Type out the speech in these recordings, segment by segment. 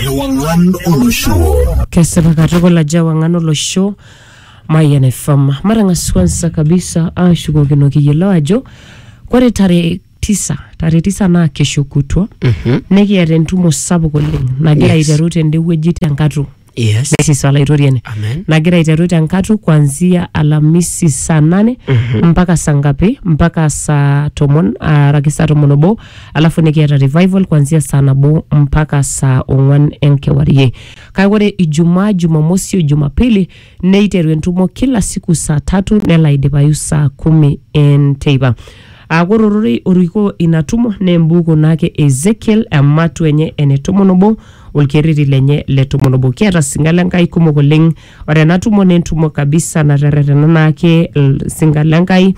Ewang'an olosho. Kesipa katukul ajo ewang'an olosho Mayian FM. Matang'as kwanza kabisa ashukokino kiyiolo ajo kore tarehe tisa tarehe tisa naa kesho kutwa nikiata entumo sapuk oleng nagira Yes. aiteru tende wueji tenkatu Yes. Mrs. Olaitoriani Amen. nagira aiteru tenkatu kuanzia Alhamisi saa nane mpaka saa ngapi mpaka saa tomon araki saa tomon obo alafu nikiata revival kuanzia saa nabo mpaka saa ong'wan enkewarie kake ore ijumaa jumamosi o jumapili neiteru entumo kila siku saa tatu nelo aidipayu saa kumi enteipa aaku ore ororei orikoo ina tumo naa embuku naake e ezekiel ematu enye ene tomon obo olkerreti lenye le tomon obo kiata singa le nkai kumok oleng Ore ena tumo naa entumo kabisa naterretena naake ilsinkan le Nkai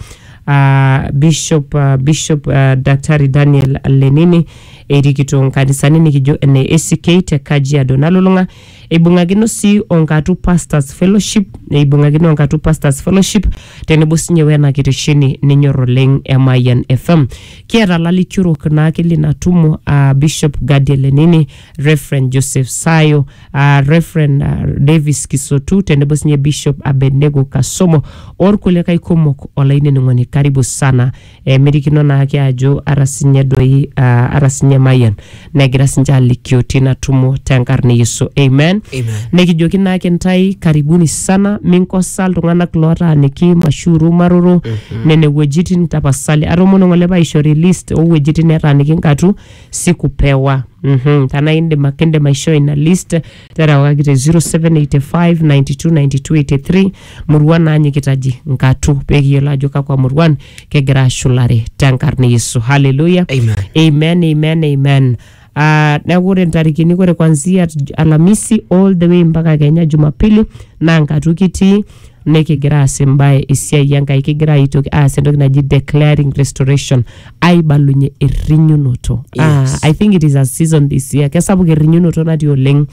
aa Bishop, uh, Bishop uh, Daktari Daniel Lenini erikito nkanisani nikijo ene ACK te Kajiado nalulung'a eibung'akino sii o Nkatu Pastors Fellowship eibung'akino o Nkatu Pastors Fellowship tenebo sinye wena kitesheni ninyor oleng e Mayian FM. Kiata lalikiorok naake lina tumo aa Bishop Gadiel Lenini, Reverend Joseph Sayo uh, Reverend uh, Davis Kisotu tenebo sinye Bishop Abednego Kasomo orkulikae kumok olainining'oni karibu sana emirikino naake ajo ara sinye doi uh, ara sinye Mayian negira sinche alikio tina tumo tenkarna e Yesu amen Amen. nikijoki naake ntae karibuni sana minkosa iltung'anak lootaaniki mashuru maroro nene wuejitin tapasali atomono ng'ole paishori list oo wuejitin netaaniki nkatu sikupewa mm-hmm. tana indim ake indim aishoo ina list terewakaki te 0785929283 muruan naanyikitaji nkatu pekiyiolo ajo kakwa muruan kegira ashulare tenkarna yesu haleluya Amen. amen amen amen Uh, neeku ore ntarikini ore kwanzia alamisi all the way mpaka kenya jumapili naa nkatu kitii nikigira aas embae esiai Enkai, kigira aitoki aas entoki naji declaring restoration, aibalunye errinyunoto. Ah, Yes. I think it is a season this year. Kesapuk errinyunoto natii oleng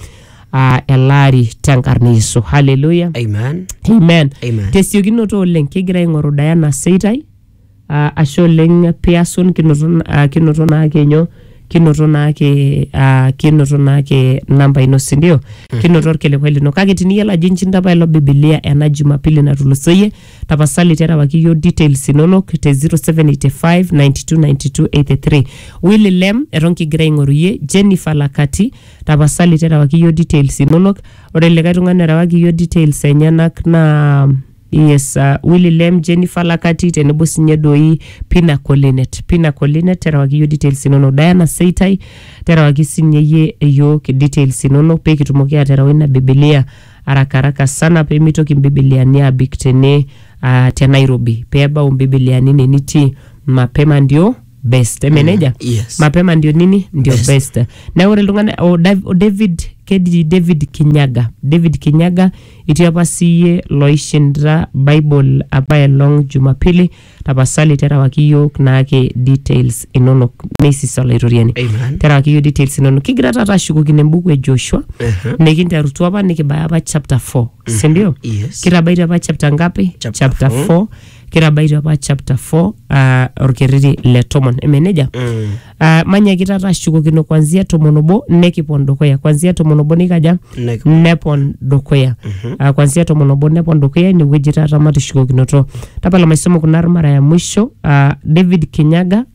ah, ele ari tenkarna e Yesu. Hallelujah. Amen. Amen. Amen. Tesiokinoto oleng kigira aing'oru Diana Seitai Ah, ashe oleng piasun kinoto ah, kinoto naake nyo kinoto naake ah, kinoto naake namba ino sindio kinoto orkilikwai lino kake tiniyiolo ajo inchinda apa ilo bibilia ena jumapili natulusoyie tapasali terewaki yiok details inonok te 0785929283 Willy Lem eton kigira aing'oru iyie Jennifer Lakati tapasali terewaki yiok details inonok ore likae tung'ani orewaki yiok details enyenak naa Yes, uh, Willy Lem, Jennifer Lakati tenebo sinye doi Pina Colinet. Pina Colinet terewaki iyio details inono. Diana Seitai terewaki sinye iyie iyiook details inono pee kitumoki aatereu ina Biblia haraka haraka sana pee mitoki mbibiliani aabik tene uh, te Nairobi pee ebau mbibiliani ine nitii mapema ndio best. Eme nejia? yes. mapema ndio nini ndio Best. best, neeku ore iltung'anak o Dav- o David keji David Kinyaga David Kinyaga Itii apa siiyie loishinda Bible apa elong Jumapili, tapasali terewaki iyiook naake details inonok. Meisisa Olaitoriani. Amen. Terewaki iyiook details inonok. Kigira taata ashukokino embuku e Joshua Aha. nikinterutua apa nikibaya apa chapter 4 si ndio? Yes. Kitabaitie apa chapter ngapi? Chapter four. 4 kitabaite apa chapter 4 uh, orkerreri le tomon eme nejia Mm. uh, manyaki taata ashukokino kwanzia tomon obo nekipon dukuya kwanzia tomon obo nikaja Nek- nepon dukuya uh, kwanzia tomon obo nepon dukuya inewueji taata matishukokinoto tapala maisomo kuna mara ya mwisho uh, david kinyaga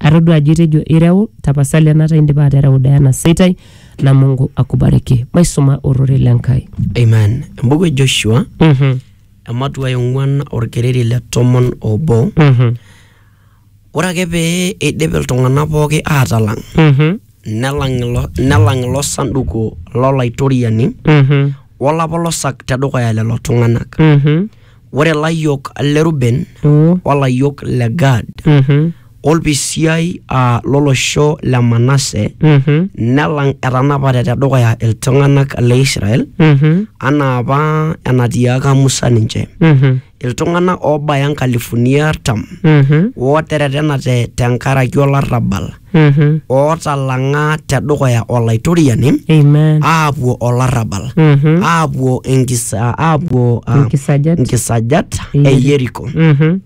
atodua ajo itejo ireu tapasali enata indipa atereu Diana Seitai na Mungu akubariki maisuma ororei le Nkai Amen. Embuku e Joshua, Mhm, ematua e ong'uan orkereri le tomon obo. mhm, Ore ake pee eidip iltung'anak pooki aatalang, mhm, nelang ilo, nelang ilo sanduku lolaitoriani mhm, wolapa losak tedukuya lelo tung'anak. mhm, ore layiok le Ruben Mm. o layiok le Gad Mhm. olpisiai aa lolosho le Manase Mhm. nelang etanapate tedukuya iltung'anak le Israel Mhm. anaa apa enatiaaka Musa ninche Mhm. iltung'anak oobaya nkalifuni artam Mhm. ooteretenate tenkaraki olarrabal Mhm. ootalang'a tedukuya olaitoriani Amen. aapuo olarrabal Mhm. aapuo enkisa aapuo ah, Inkisajat. inkisajat e Yeriko. Yeriko Mhm.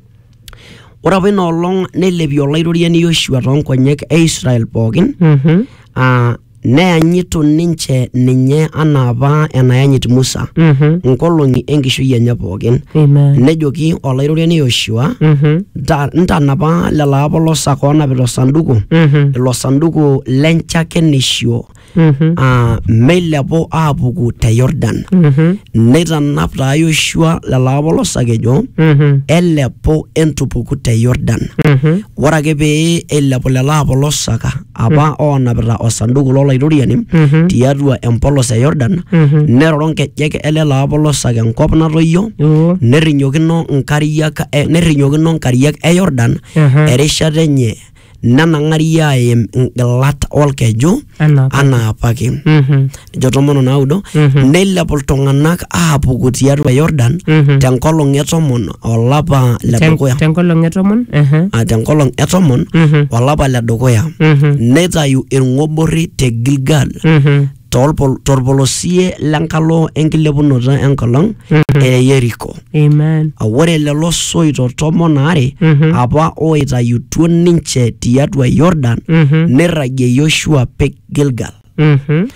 ore apa ina olong neilepie olaitoriani Yoshua toonkonyek e Israel pookin Mhm. ah, Neyanyitu ninche ninye anaa apa enayanyit Musa Mhm. nkolong'i enkishui enye pookin. Amen. Nejoki olairoriani Yoshua, Mhm. "Nta- ntanapa lelo apolosak oonapita osanduku, Mhm. ilo sanduku lenchakenisho Mhm. aa meilepu aapuku te Yordan. Mhm. Neitanap taa Yoshua lelo apolosak ejo, Mhm. elepu entupuku te Yordan. Mhm. Ore ake pee eilepu lelo apolosaka apa oonapita osanduku lolairoriani Mhm. tiatua empolos e Yordan Mhm. neroro nkejek e lelo apolosak enkop natoyio Yoo. nerrinyokino nkariak e- nerrinyokino nkariak e Yordan Aha. erishata enye nenang'ari aaim ngilat olkeju Anaa apa. anaa apake Mhm. ejo tomon onaudo Mhm. neilepu iltung'anak aapuku tiatua Yordan Mhm. tenkolong e tomon olapa le Ten- dukuya tenkolong e tomon ehe, Ah, tenkolong e tomon mhm, olapa le dukuya mhm, neitayu ilng'oborri te Gilgal mhm, tolpol- tolpolosie lenkalo enkilepunoto enkolong mhm. e Yeriko Amen. Ah, ore lelo soito tomon aare Mhm. apa ooitayutuo ninche tiatua Yordan Mhm. neirragie Yoshua pek Gilgal Mhm.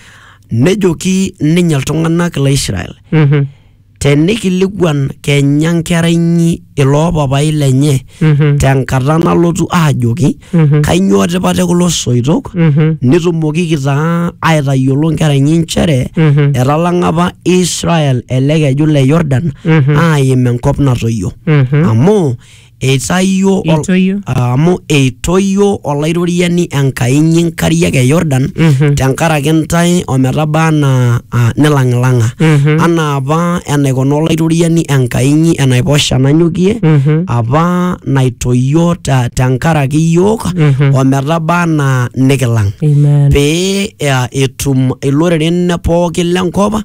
nejoki ninye iltung'anak le Israel Mhm. tenikilikuan kenya nkera inyi iloo papai lenye Mhm. tenkata nalotu aajoki Mhm. kainyoo tipat e kulo soitok Mhm. nitumokiki taa aitayiolo nkera inyi nchere Mhm. etalang'a apa Israel ele keju le Yordan Mhm. aim enkop natoyio Mhm. amu Eitayio ol- Eitoyio. Ah, amu eitoyio olairoriani Enkai inyi nkariak e Yordan Mhm. tenkaraki intae ometaba anaa ah, nilang'ilang'a Mhm. anaa apa enaikuna olairoriani Enkai inyi enaiposha nanyokie Mhm. apa naitoyio ta- tenkaraki iyiook Mhm. ometaba anaa nikilang Amen. pee eh, etum iloreren pookin lenkop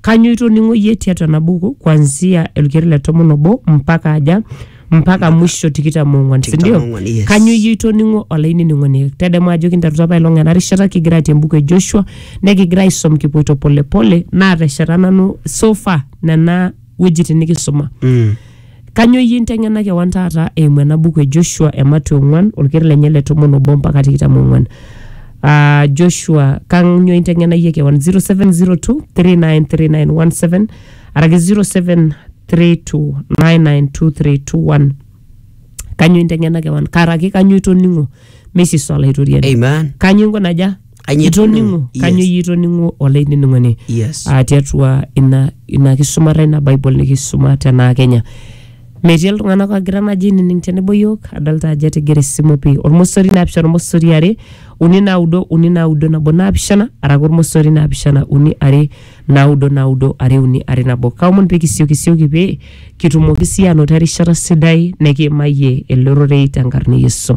Kanyo itoning'o iyie tiatua ena buku kuanzia olkeri le tomon obo mpaka aja mpaka mwisho tikitam ong'uan si Tikitam ndio? ong'uan, yes. Kanyo iyie itoning'o olainining'oni tadamu ajo kinterutua apa ilong ena rishata kigira atii embuku e Joshua nekigira aisom kipoito polepole naatesheta nanu so far nena wuejitin nikisuma Mm. Kanyoo iyie inteng'ena kewan taata eimu ena buku e Joshua e Mateo ong'uan olker lenye le tomon obo mpaka tikitam ong'uan. Ah, Joshua, kanyoo inteng'ena iyie kewan 0702393917 araki 0732992321. Kanyoo inteng'ena kewan karaki kanyoo itoning'o meisisa Olaitoriani. Amen. Kanyoo inko naja? Kanyio itoning'o Yes. kanyio iyie itoning'o olainining'oni Yes. aa tiatua ina ina kisumata ina bible nikisuma tenaa kenya metii iltung'anak ogira naji ainining tenebo yiok adolta ajo etigire esimu pii ormosori naapishana ormosori are uni naudo uni naudo nabo naapishana araki ormosori naapishana uni are naudo naudo are uni are nabo kaomon pee kisiokisioki pee kitumoki sii anoto erishata sidai nikiimayie ele rorei tenkarna e yesu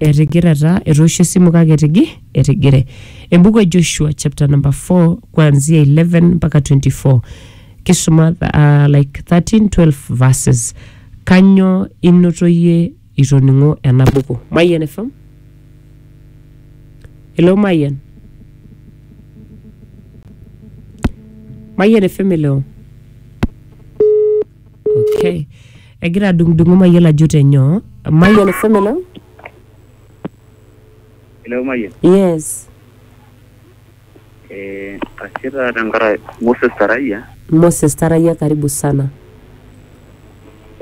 etigire taa etoosho esimu kake etigi etigire embuku e joshua chapter number 4 kuanzia 11 mpaka 24 kisuma uh, like 13 12 verses kanyo inotoyie itoning'o ena buku mayian fm hello mayian mayian fm hello okay egira adung'udung'u mayiolo ajo tenyoo mayian fm elo Hello, Mayian. yes Eh, ashe taa tenkaraki Moses Tarayia. moses tarayia karibu sana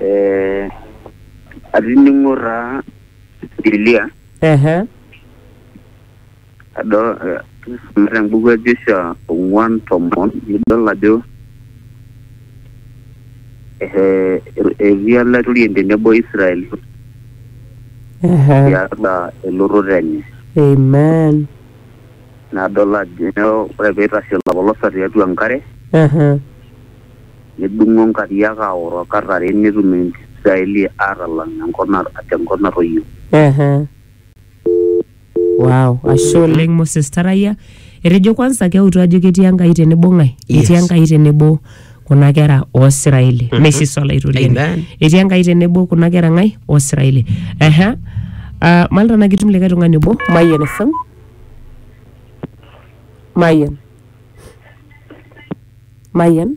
Eh, atining'o taa Biblia ehe Adol te embuku e Joshua ong'uan tomon nidol ajo ehe, etii olaitoriani tenebo Israel Ehe. tiatua elototo enye. Amen. Nadol ajo ore peitashe olopolosa tiatua enkare, Ehe. nedung'o nkariak aoro kat are netum Israeli aatalang enkop na- tenkop natoyio. Ehe. Wow, ashe oleng Moses Tarayia. Etejo kwanza keutu ajo ketii Enkai tenebo ng'ae? Yes. Etii Enkai tenebo kuna kera oo Israeli. Mhm. Mesis Olaitoriani. Amen. Etii Enkai tenebo kuna kera ng'ae? Oo Israeli. Ehe. Ah, Malta na kitum likae tung'ani obo. Mayian FM. Mayian. Mayian.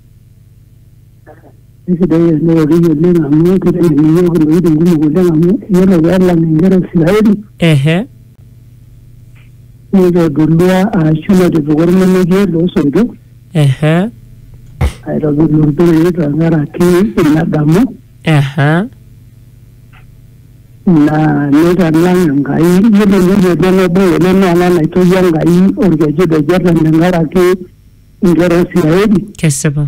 Kesidai eneoriki oleng amu kiteng'en iyiook intokitin kumok oleng amu iyiolo peelang inkera e Israeli ehe nitodolua arashu natipika ormonokie loosoitok ehe aitodolu ilpirri tenkaraki ina damu ehe naa nitalang Enkai iyiolo entoki nabo oleng naa ena naitoyio Enkai orkeju te Jordan tenkaraki Ngera Siraeli kesipa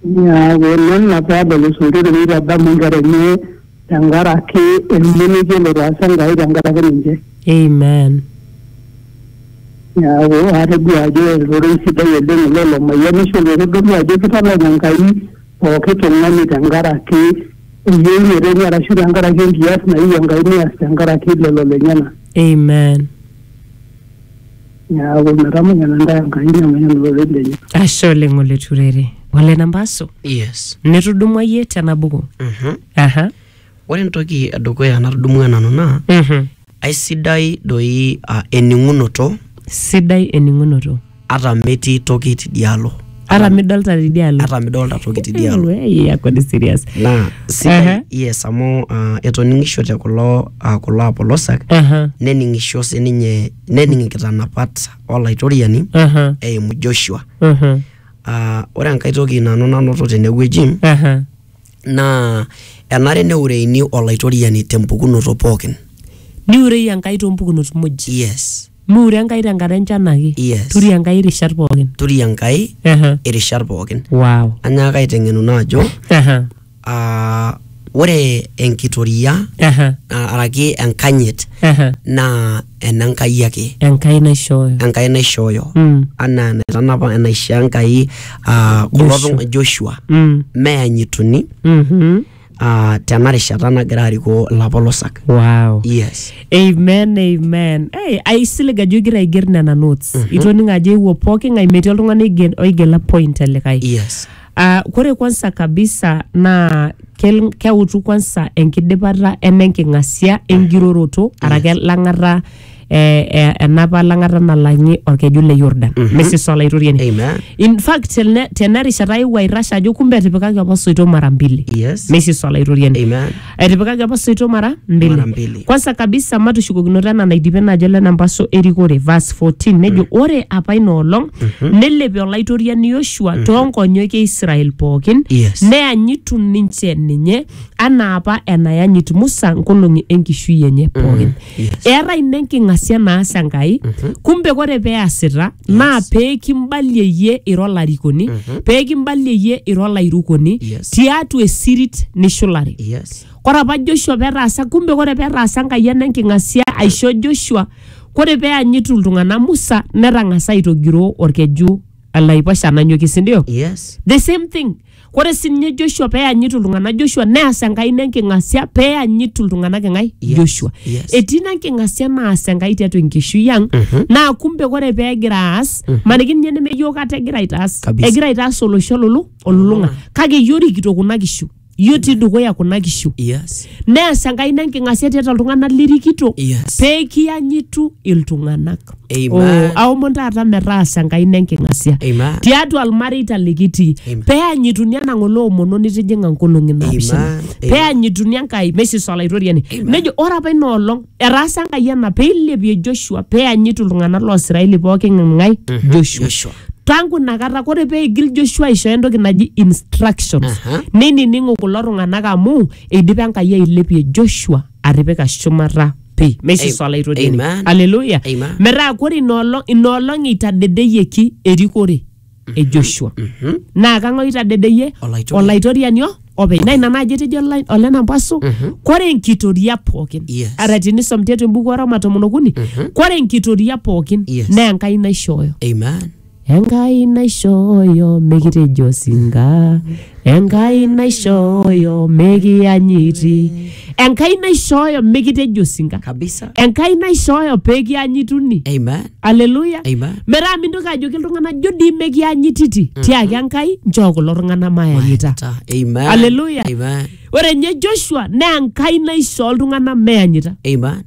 neaku nena peedol isuntoto neitadamu inkera enye tenkaraki ilmonekie lotaasa Enkai tenkaraki ninche. amen Neaku atodua ajo ororei sidai oleng ilo lomayianisho loitodolu ajo kitalana Enkai pooki tung'ani tenkaraki eyieunoto enye arashu tenkaraki enkias nayieu Enkai neas tenkaraki lelo lenyena. amen Neaku metamayiana ntae Enkai nemayiana olorere lenye. ashe oleng oleturere ole nambasu yes nitudumua yie tena buku Mhm. aha ore entoki edukuya natudumua nanu naa Mhm. aisidai doi ah, ening'unoto sidai ening'unoto ata metii toki tidialo ata midolta tidialo ata midolta toki tidialo Ei, yako ni serious naa sidai Ehe. yes amu uh, etoning'ishote kulo uh, kulo apolosak Aha, nening'isho sininye nening inkitanapat olaitoriani aha, eimu joshua aha, uh, ore enkae toki nanu nanoto tenewueji aha. naa enare neureini olaitoriani tempukunoto pookin niurei enkai toompukunot muj yes Miure Enkai tenkata enchan ake. Yes. Turi Enkai irishat pookin. turi enkai Aha. irishat pookin Wow. anyaaka aiteng'enuno ajo Aha. ah, ore enkitoria Aha. ah, araki enkanyit Aha. naa enenkai ake Enkai naishooyo. enkai naishooyo Mm. anaa enaitanapa enaishoo enkai ah, kulo Joshua. tung'a- joshua Mm. meyanyituni Mhm. ah, tena rishata nagira arikoo ilapolosak wow. yes amen amen hey, aisilig ajo igira aiger nena notes itoning ajo eewuo pooki ng'ae metii oltung'ani oige- oigela point elikae yes Ah, kore kwanza kabisa naa kel- keutu kwanza enkidipata enenking'asia engiroroto arake lang'ata eh, eh, enapa lang'ata nalang'i olkeju le Yordan Mhm. mesisa olaitoriani Amen. in fact tene- tena rishata aewuo airrash ajo kumbe etipikaki apa soito mara mbili Yes. mesisa olaitoriani Amen. etipikaki apa soito mara Mara mbili mbili. kwanza kabisa matushukokinoto ena naidipe naajo lena mpaso erikore verse 14 nejo ore apa ina olong nelepi olaitoriani yoshua toonkonyoki e israel pookin Yes. neanyitu ninche ninye anaa apa enayanyit musa nkolong'i enkishui enye pookin Yes. eetae ina enking'asia naas enkai kumbe kore peasita naa peekimbalie iyie ira olarikoni peekimbalie iyie ira olairukoni Yes. tiatua esirit nishulare Yes. kore apa joshua petaasa kumbe kore petaasa enkai ena enking'asia aisho joshua kore peanyitu iltung'anak musa netang'asa aitogiroo orkeju laiposha nanyokie sindio Yes. the same thing Ore sii ninye Joshua pee eyanyitu iltung'anak Joshua neas Enkai ina enking'asia pee eyanyitu iltung'anak eng'ae Yes, Joshua. yes. Etii ina enking'asia naas Enkai tiatua enkishui ang naa kumbe ore pee egira aas maniki ninye neme iyiook ate egira aitaas Kabisa. egira aitaas olosho lulu olulung'a kake iyie orikito kuna kishu iyie otii dukuya kuna kishu Yes. neas Enkai ina enking'asia tiatua iltung'anak lirikito Yes. pee kiyanyitu iltung'anak. Amen. aomon taata metaasa enkaina enking'asia Amen. tiatua ilmareita likitii Amen. peanyituni ena ng'ole omono nitijing'a nkolong'i naapishana Amen. Amen. peanyituni enkai meisisa olaitoriani nejo ore apa ina olong etaasa enkai ena peilepie joshua peanyitu iltung'anak loosiraeli pooki ng'ae joshua Joshua. tangu inakata kore peigil joshua aishooyo entoki naji instructions Aha. neinining'u kulo tung'anak amu eidipa enkai ailepie joshua atipika shumata pi meisisa olaitodini Amen. aleluya Amen. metaa kore inoolong inoolong eitadedeyieki erikore e joshua Mhm. naa kang'ae oitadedeyie Olaitoriani. olaitoriani o- openy naa ina naaji etejo olai- olenampasu kore enkitoria pookin Yes. ara tinisom tiatua embuku oroma tomon okuni kore enkitoria pookin Yes. naa enkai naishooyo Amen. Enkai naishooyo mikitejo osinka, Enkai naishooyo mikiyanyiti, Enkai naishooyo mikitejo osinka, Kabisa. Enkai naishooyo pekianyituni. Amen. Aleluya. Amen. Metaa mintoki ajoki iltung'anak jo dii mekianyititi. Tiaki Enkai nchoo kulo tung'anak mayanyita. Ta- Amen. Aleluya. Amen. Ore nye Joshua naa Enkai naishoo iltung'anak meyanyita. Amen.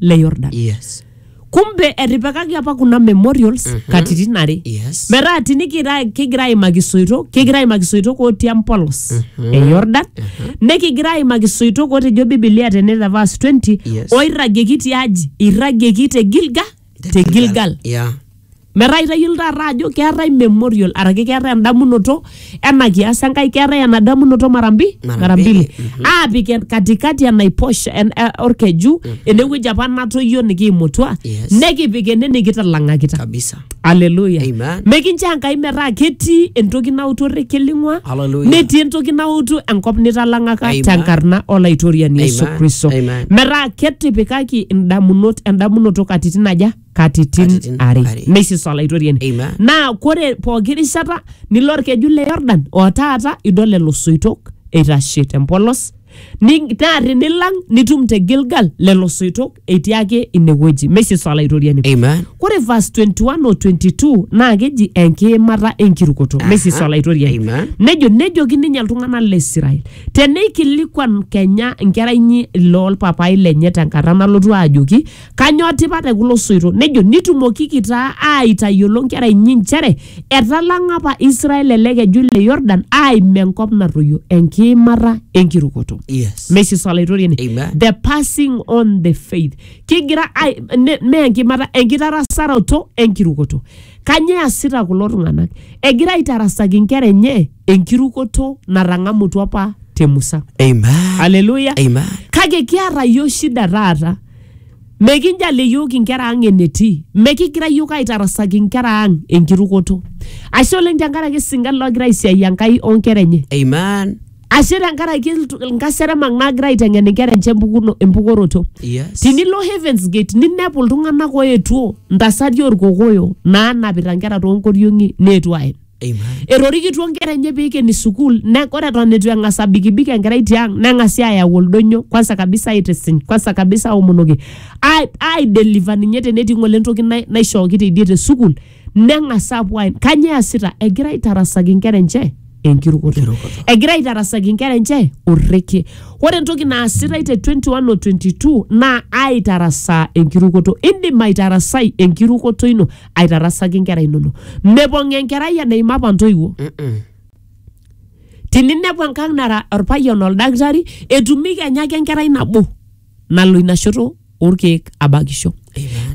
le yordan Yes. kumbe etipikaki apa kuna memorials mm -hmm. katitin are Yes. metaa tinikira kigira aimaki soito kigira aimaki soitok otii empolos mm -hmm. e yordan mm -hmm. nikigira aimaki soitok otejo bibilia tene te verse 20 Yes. oirragieki tiaji irragieki te gilga te gilgal Yeah. Metaa itayiolo taata ajo keetae memorial araki keetae endamunoto ena kias Enkai, keetae ena damunoto mara mbi Mara mara mbili. mbili aapik en- katikati enaiposha en- eh, orkeju enewueji apa natoyio nikiimutua Yes. nekipik ene nikitalang'akita kabisa Haleluya. Amen. Mekinchoo Enkai metaa ketii entoki nautu orrekie ling'ua, Hallelujah. netii entoki nautu enkop nitalang'aka Amen. tenkarna olaitoriani Yesu Amen. Kristo. Amen. Metaa ketipikaki indamunot endamunoto katitin aja? katitin Katitin are are. meisisa olaitoriani Amen. naa kore pooki rishata nilo orkeju le yordan o taata idol lelo soitok eitashe tempolos Ni- naa tinilang nitum te gilgal lelo soitok etii ake inewueji meisisa olaitoriani Amen. kore verse 21 o 22 naa keji enkiimata enkirukoto Aha. meisisa olaitoriani Amen. nejo nejoki ninye iltung'anak le israel teneikilikuan kenya nkera inyi loolpapai lenye tenkata nalotu ajoki Kanyoo tipat e kulo soito? Nejo, Nitumokiki taa aaitayiolo nkera inyi nchere etalang'a apa Israel ele keju le Yordan aaim enkop natoyio, enkiimata enkirukoto. Yes. Mesis Olaitoriani. Amen. The passing on the faith. Kigira ai- ne- mee enkimata, enkitarasaroto enkirukoto. Kanyoo easita kulo tung'anak? Egira aitarasaki nkera enye enkirukoto natang'amutua apa te Musa. Amen. Aleluya. Amen. Kake kiata yiok shida taata. Mekinjali yiok inkera ang enetii. Mekigira yiok aitarasaki inkera ang enkirukoto. Ashe oleng tenkaraki isingan loogira aisiai Enkai onkera enye. Amen. Ashe tenkaraki iltu- inkaseremak naagira aiteng'en inkera enche empukuno- empukoroto. Yes. Tinilo Heavens Gate ninepu iltung'anak oetuo ntasati orkokoyo naanapita nkera toonkoriong'i neetuo aen. Amen. etorikituo nkera enye peikeni sukuul ne- ore eton eitu eng'as abikibik enkerai tiang neng'asi ayau oldonyo kwanza kabisa aitisiny kwanza kabisa aomonoki ai- aideliver ninye tenetii ng'ole entoki nai- naishooki teidie te sukuul neng'as apuo aen kanyoo easita egira aitarasaki nkera enche enkirukoto Enkirukoto. egira aitarasaki nkera enche orrekie ore entoki naasitai te 21 o 22 naa aitarasaa enkirukoto indim aitarasai enkirukoto ino aitarasaki inkera inono mepong enkerai eneima apa ntoiwuo Mm-mm. tininepu enkang nara orpayian oldakitari etumi kenya ake enkerai nabo nalo ina shoto orkeek abakisho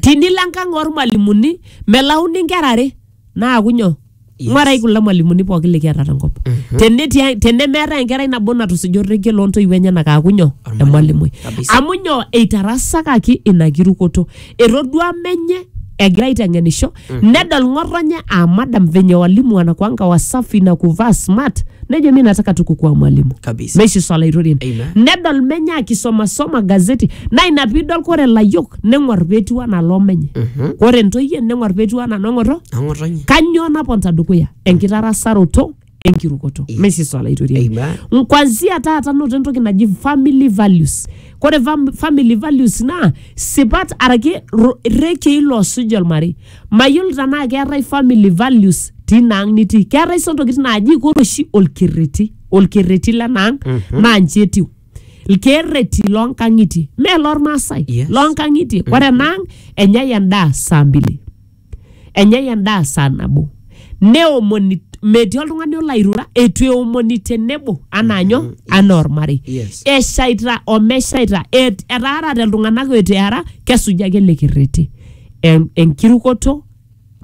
tinilo enkang ormalimuni melauni inkera are naaku nyoo Yes. ng'uarai kulo mwalimuni pooki likiata tenkop Tenetii- tenemeetae enkerai nabo natusuja orrekie loontoiwuo enyenak aaku nyoo Ormalimui. emalimui Kabisa. amu nyoo eitarasakaki ina kirukoto etodua menye egira aiteng'enisho nedol ng'otonye aa madam venye walimu wanakuanga wasafi na kuvaa smart nejo mi nataka tu kukuwa mwalimu Kabisa. meishi swala itorien Amen. nedol menye akisomasoma gazeti na ina piidol kore layiok neng'or petiu anaa loo menye Mhm. ore ntoyie neng'or petiu anaa nong'oto Ang'otonye. kanyoo naponta dukuya enkitarasaroto enkirukoto Yes. mesisa olaitoriani Amen. kwanzia taata noto entoki naji family values kore fam family values naa sipat araki ro- rekei loosuj olmarei mayiolo tanaa keetae family values tina ang nitii keetae sa ntokitin naaji kore oshi olkerreti olkerreti lenaang mm -hmm. naa nji etiu ilkeerreti loonkang'itie mee lormaasai Yes. loonkang'itie ore enaang enyai endaa saa mbili enyai endaa saa nabo neomoni metii oltung'ani olo airura eitu eomoni tenebo anaa nyo anaa ormarei Yes. eshaita omeshaita et- etaarate iltung'anak eitu eara kesuji ake ele kerreti En- enkirukoto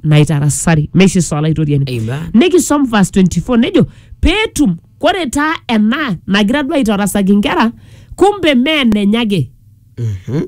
naitarasari meishiso olaitoriani Amen. nikisom verse 24 nejo peetum Kore taa ena nagira duo aitarasaki nkera, kumbe mee enenye ake, Mhm.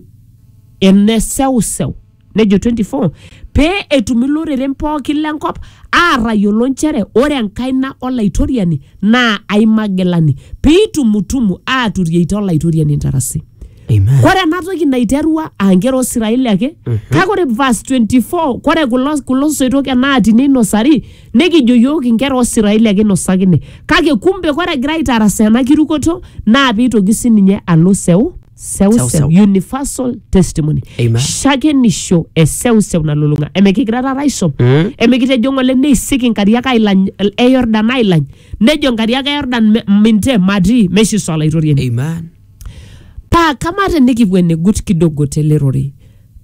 ene seuseu. Nejo 24, pee etum iloreren pookin lenkop aatayiolo nchere ore enkaina Olaitoriani naa aimagilani, piitumutumu aaturieita Olaitoriani intarasi. Amen. kore ena toki naiterua aa nkera oo Israeli ake kake ore verse 24 kore kulo, kulo soitok enaati neinosari nekijo yiook inkera oo Israeli ake inosakine kake kumbe kore egira aitarasaa ena kirukoto naa peitoki sininye alo seu Seu, seuseu seu. universal testimony Amen. shakenisho e seuseu nalulung'a emikigira taata aisom Mm. emikitejo ng'ole neisik inkariak ailany e Yordan ailany nejo inkariak e Yordan "Me- minte matii meshiso olaitoriani Amen. Paa kamaa tenikipuo enegut kidogo tele rorei,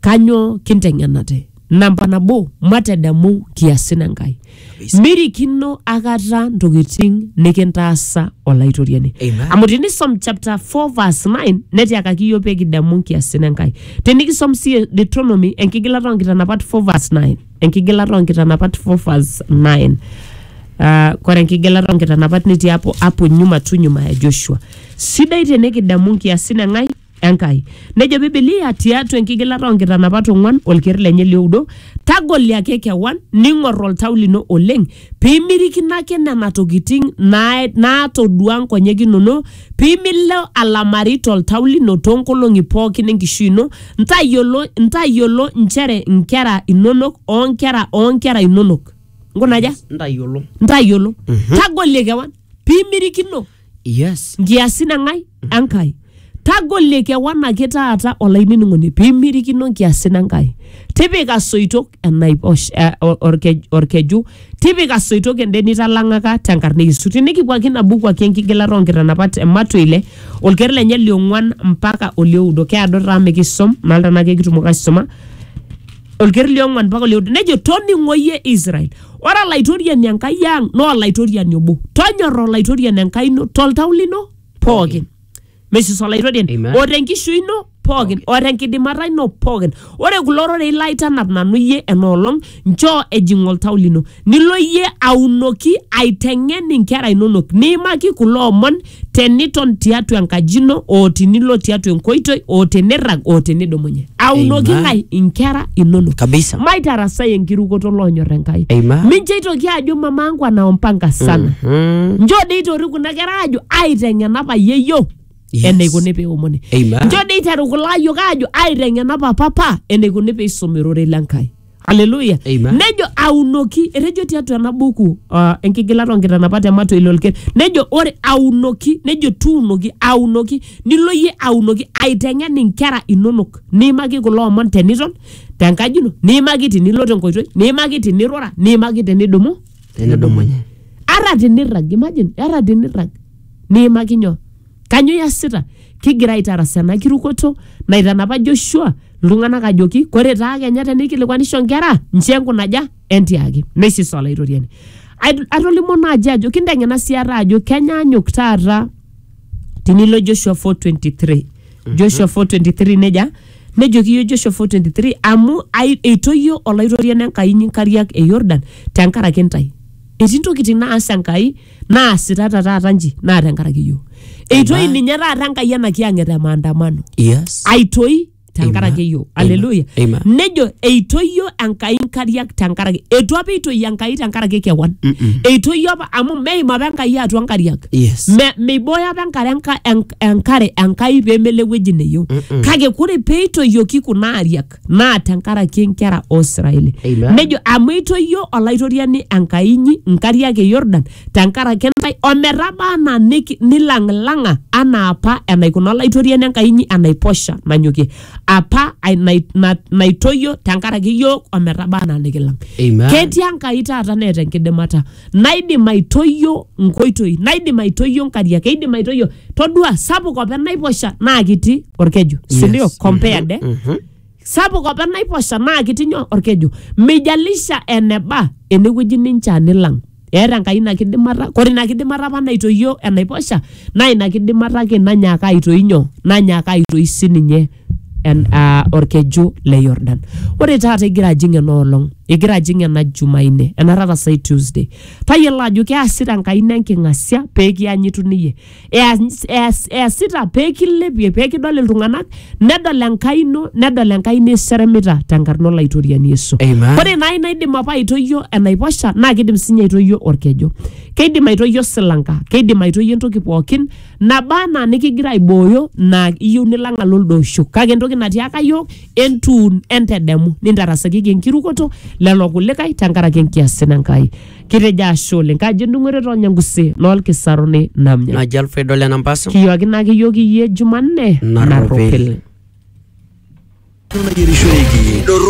kanyoo kinteng'enate? Namba nabo, matadamu nkiasin e Nkai. Mirikino akata ntokitin nikintaasa Olaitoriani. Amen. Amu tinisom chapter 4 verse 9 netiakaki iyiook pee kidamu nkiasin e Nkai. Tinikisom sii Deuteronomy enkigilata oo nkitanapat 4 verse 9. enkigilata oonkitanapat Fofas 9 Ah, kore enkigilata oonkitanapat netii apo apo nyuma tu nyuma ya Joshua sidai tenikidamu nkiasin eng'ai Enkai nejo Bibilia tiatua enkigilata oonkitanapat ong'uan olker lenye lioudo tagoliaki kewan ning'or oltau lino oleng piimirikino ake nena tokitin naa- naatoduaa nkonyek inono, pimilo alamari toltau lino toonkolong'i pookin enkishui ino, ntayiolo, ntayiolo nchere nkera inonok o nkera oo nkera inonok. Nkuna aja? Ntayiolo. Ntayiolo. Tagolie kewan piimirikino. yes nkiasin eng'ae enkai tagolie kewan ake taata olainining'oni piimirikino nkiasin enkai tipika soitok enaiposh eh, or- orkej- orkeju tipika soitok ende nitalang'aka tenkarna e yesu tinikipuo ake ina buku ake enkigilata oonkitanapat e matwa ile olker lenye liong'uan mpaka olioudo keado taa mikisom nalta naake kitumoki aisuma olker liong'uan mpaka olioudo nejo toning'oyie israel Ore Olaitoriani Enkai ang naa Olaitoriani obo. Tonyorra Olaitoriani Enkai ino toltau lino pookin. Mesis Olaitoriani. Amen. O tenkishui ino pookin. O tenkidimata ino pookin. Ore kulo rorei laitanap nanu iyie enoolong, nchoo ejing oltau lino. Nilo iyie aunoki aiteng'en inkera inonok. Niimaki kulo omon teniton tiatua enkaji ino o tinilo tiatua enkoitoi o tenirrag o tenidumunye aunoki Amen. ng'ae inkera inonok Kabisa. maitarasai enkirukoto loonyor enkai Amen. mincho itoki ajo mama angu anaompanga sana Mhm. njo dei itorik kuna kera ajo aiteng'ena payie yiok Yes. eneikuni peomoni Amen. njo dei iteru kulo ayiok ajo aiteng'ena papa pa eneikuni peisumi rorei le nkai Haleluya. Amen. Nejo aunoki, etejo tiatua ena buku uh, enkigilata onkitanapat emato ilo olker. Nejo ore aunoki, nejo tuunoki, aunoki, nilo iyie aunoki aiteng'en inkera inonok. Niimaki kulo omon teniton tenkaji ino, niimaki tinilo tenkoitoi, niimaki tinirura, niimaki tinidumu. Tenidumunye. Ara tinirrag, imagine, ara tinirrag. Niimaki nyoo? Kanyo iasita? Kigira aitaras ena kirukoto naitanapa Joshua iltung'anak ajoki kore taa kenya teneikilikuanisho nkera nchoo enkunaja entiaki neisisa Olaitoriani. Ait- Atolimuo naaji ajo kinteng'ena sii ate ajo kenyaanyuk taata tinilo Joshua 4:23 Joshua 4:23 neja nejoki iyio Joshua 4:23 amu ai- eitoyio Olaitoriani Enkai inyi nkariak e Yordan tenkaraki intae. Etii ntokitin naas Enkai naasitata taata nji naa tenkaraki iyiook eitoi Amen. ninye taata enkai ena kiyang'et e maandamano Yes. aitoi tenkaraki Amen. iyiook Amen. aleluya Amen. nejo eitoyio enkai nkariak tenkaraki eitu apa eitoi enkai tenkaraki kewan Mm-mm. eitoyio apa amu meim apa enkai atua nkariak Yes. Me- meibooyo apa enkare enka- enk- enkare enkai pemelo ewueji neyieu Mm-mm. kake kore peitoyioki kuna ariak iltung'anak naa tenkaraki inkera o Israeli. Amen. Nejo amu eitoyio olaitoriani Enkai inyi inkariak e Yordan tenkaraki intae ometaba anaa niki- nilang'ilang'a anaa apa enaikuna olaitoriani Enkai inyi enaiposha nanyokie apa ai- nai- na- naitoyio tenkaraki iyiook ometaba anaa nikilang. Amen. Ketii Enkai taata neeta enkidimata. naidim aitoyio nkoitoi naidim aitoyio nkariak keidim aitoyio todua sapuk opa enaiposha naa kiti orkeju sindio Yes. compared eh? Mhm. sapuk opa enaiposha naa kiti nyoo orkeju mijalisha eneba enewueji nincha nilang eeta enkai ina kidimata kore ina kidimata apa naitoyio enaiposha naa ina kidimata ake nanyaaka aitoi nyoo nanyaaka aitoi sininye en- ah, orkeju le Yordan. Ore taata igira ajing ena olong, igira ajing ena Jumanne, ena taata sai Tuesday, tayiolo ajo keasita Enkai ino enking'asia pee kianyitu niyie. Eas- eas- Easita pee kilepie, pee kidol iltung'anak, nedol Enkai ino, nedol Enkai ino iseremita tenkarna Olaitoriani Yesu. Amen. Ore naa ina idim apa aitoyio enaiposha naa kidim sinye aitoyio orkeju. Keidim aitoyio silanka, keidim aitoyio entoki pookin naba anaa nikigira aibooyo naa iyieu nilang alo lido osho kake entoki natiaka yiok entuun entedemu nintarasakiki enkirukoto lelo kulikae tenkaraki enkiasin Enkai kitejo ashe oleng kajo endung'oto too nyangusi noolkisaruni namnya naji alfredo lenampasa kiyuakina ake yiok iyie jumanne Narropil. narropil nayierishoreki